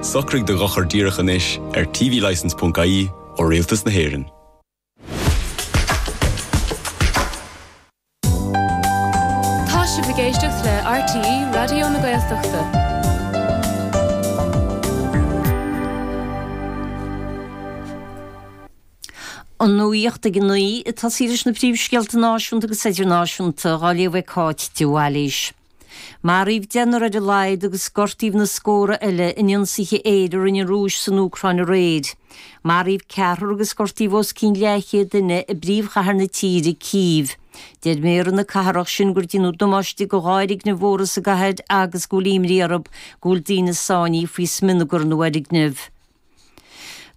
Socraigh do dhochar díreach anois ar tvlicence.ie ó Rialtas na hÉireann. Tá sibh ag éisteacht le RTÉ Raidió na Gaeltachta. An nuaíocht ag a naoi ag tosaí leis na príomhscéalta náisiúnta agus idirnáisiúnta, dhá léamh ag Cáit de Bhailís. Maraíodh deichniúr ar a laghad agus gortaíodh na scórtha eile in ionsaithe aeir a rinne an Rúis san Úcráin aréir. Maraíodh ceathrar agus gortaíodh os cionn leathchéad duine i bpríomhchathair na tíre, Cív. Deir méara na cathrach sin gur déanadh damáiste do dhá fhoirgneamh mhóra sa gcathair agus go bhfuil imní orthu go bhfuil daoine sáinnithe faoi smionagar na bhfoirgneamh.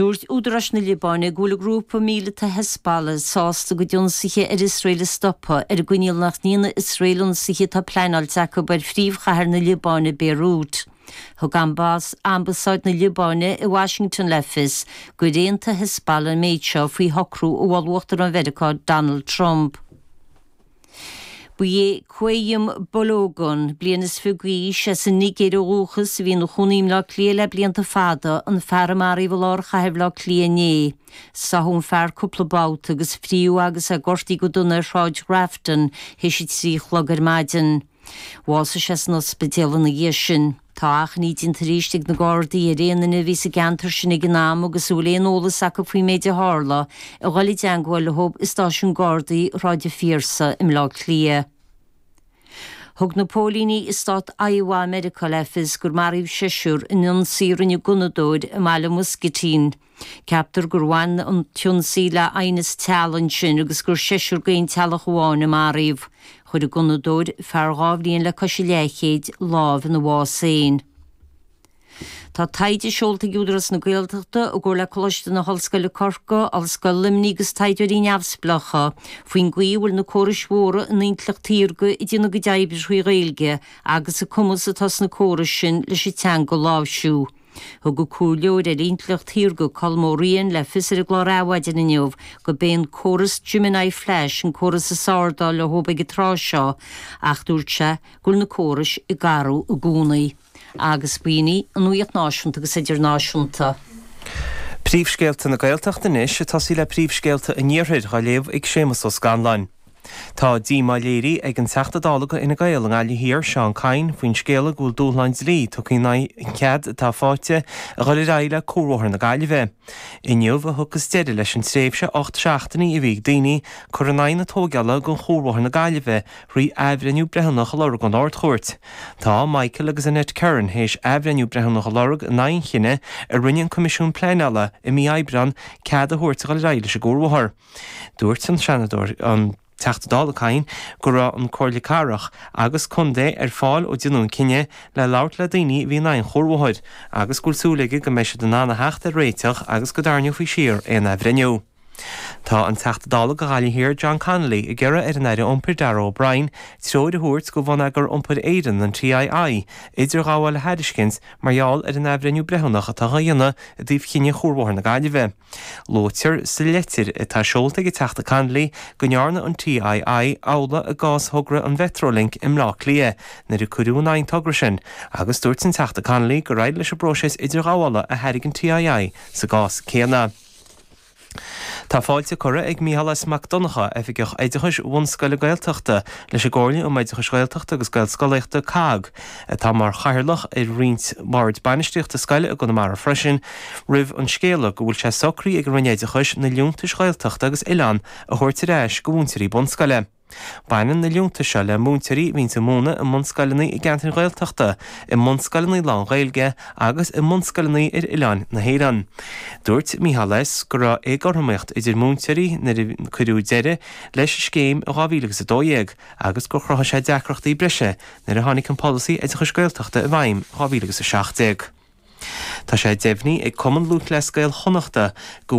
Dúirt údaráis na Liobáine go bhfuil grúpa míleata Hezbollah sásta a gcuid ionsaithe ar Iosrael a stopadh, ar an gcoinníoll nach ndéanfaidh Iosrael ionsaithe atá pleanáilte acu ar phríomhchathair na Liobáine, Béiriút. Thug ambasáid na Liobáine i Washington le fios gur aontaigh Hezbollah an méid seo faoi shocrú a mhol Uachtarán Mheiriceá Donald Trump. Ba é Qayyum Balogun, bliain is fiche d'aois, as an Nigéir ó dhúchas, a bhí ina chónaí i mBleá Cliath le blianta fada, an fear a maraíodh i lár chathair Bhleá Cliath inné. Sáthadh an fear cúpla babhta agus frítheadh agus é gortaithe go dona ar Shráid Grafton théis a trí a chlog ar maidin. Bhásaigh sé san ospidéal ina dhiaidh sin. Tá achainí déanta arís ag na Gardaí ar aon duine a bhí sa gceantar sin ag an am agus a bhfuil aon eolas acu faoin méid a tharla, a dhul i dteangmháil leo i Stáisiún Gardaí Shráid an Phiarsaigh i mBleá Cliath. Thug na póilíní i Stát Iowa i Meiriceá le fios gur maraíodh seisiúr in ionsaí a rinne gunnadóir i mbaile Muscatine, Ceaptar gur bhain an t-ionsaí le haighneas teaghlaigh ansin agus gur seisear d'aon teaghlach amháin a maraíodh. Chuir an gunnadóir, fear dhá bhliain le cois a leathchéid, lámh ina bhás féin. Tá taighde seolta ag Údarás na Gaeltachta, i gcomhar le Coláiste na hOllscoile Corcaigh, Ollscoil Luimnigh agus taighdeoirí neamhspleácha, faoin gcaoi a bhfuil na córais mhóra in intleacht shaorga ag déanamh a gcuid oibre trí Ghaeilge agus an cumas atá sna córais sin leis an teanga a láimhsiú. Thug an comhairleoir ar intleacht shaorga Colm Ó Riain le fios ar an gclár Adhmhaidin inniu gurb é an córas Gemini Flash an córas is fearr dá bhfuil leo ag an tráth seo ach dúirt sé go bhfuil na córais ag athrú i gcónaí. agus b'in í an nuaíocht náisiúnta agus idirnáisiúnta. Príomhscéalta na Gaeltachta anois ag tosaí le príomhscéalta an Iarthair dhá léamh ag Séamas Ó Scanláin. Tá díomá léirithe ag an Teachta Dála do Fhine Gael i nGaillimh Thiar, Seán Kyne, faoin scéala go bhfuil dúshlán dlí tugtha in aghaidh an chead atá faighte a dhul ar aghaidh le Cuarbhóthar na Gaillimhe. Inniu a thiocfas deireadh leis an tréimhse ocht seachtainí a bhí ag daoine cur in aghaidh na tógála de Chuarbhóthar na Gaillimhe thrí athbhreithniú breithiúnach a lorg ón Ardchúirt. Tá Michael agus Annette Curran théis athbhreithniú breithiúnach a lorg in aghaidh an chinnidh a rinne an Coimisiún Pleanála i mí Aibreán cead a thabhairt a dhul ar aghaidh leis an gcuarbhóthar. Dúirt an Seanadóir, an Teachta Dála Kyne go raibh an Comhairle Cathrach agus Contae ar fáil ó deineadh an cinneadh le labhairt le daoine a bhí in aghaidh an chuarbhóthair agus go bhfuil súil aige go mbeidh siad in ann a theacht ar réiteach agus go dtarraingeofaí siar aon athbhreithniú. Tá an Teachta Dála do Ghaillimh Thiar John Connolly ag iarraidh ar an Aire Iompair Darragh O'Brien treoir a thabhairt do Bhonneagar Iompair Éireann, an TII, idirghabháil a thairiscint mar gheall ar an athbhreithniú breithiúnach atá á dhéanamh i dtaobh cinneadh Chuarbhóthar na Gaillimhe. Luaitear sa litir atá seolta ag an Teachta Connolly go ndearna an TII amhlaidh i gcás thogra an Mhetrolink i mBleá Cliath nuair a cuireadh in aghaidh an togra sin agus dúirt an Teachta Connolly gur éirigh leis an bpróiseas idirghabhála a thairg an TII sa gcás céanna. Tá fáilte curtha ag Micheál S Mac Donnacha, Oifigeach Oideachais Bhunscoile Gaeltachta, leis an gComhairle um Oideachas Gaeltachta agus Gaelscolaíochta, COGG, atá mar chathaoirleach ar roinnt bord bainistíochta scoile i gConamara freisin, roimh an scéala go bhfuil sé socraithe ag an Roinn Oideachais na liúntais Ghaeltachta agus Oileán a thabhairt ar ais do mhúinteoirí bunscoile. Baineann na liúntais seo le múinteoirí a bhíonn ag múineadh i mbunscoileanna i gceantair Ghaeltachta, i mbunscoileanna lán-Ghaeilge agus i mbunscoileanna ar oileáin na hÉireann. Dúirt Micheál S. go raibh éagothromaíocht idir múinteoirí nuair a cuireadh deireadh leis an scéim in 2012 agus gur chruthaigh sé deacrachtaí breise nuair a tháinig an Polasaí Oideachais Gaeltachta i bhfeidhm in 2017. Tá sé deimhnithe ag Cumann Lúthchleas Gael Chonnachta go.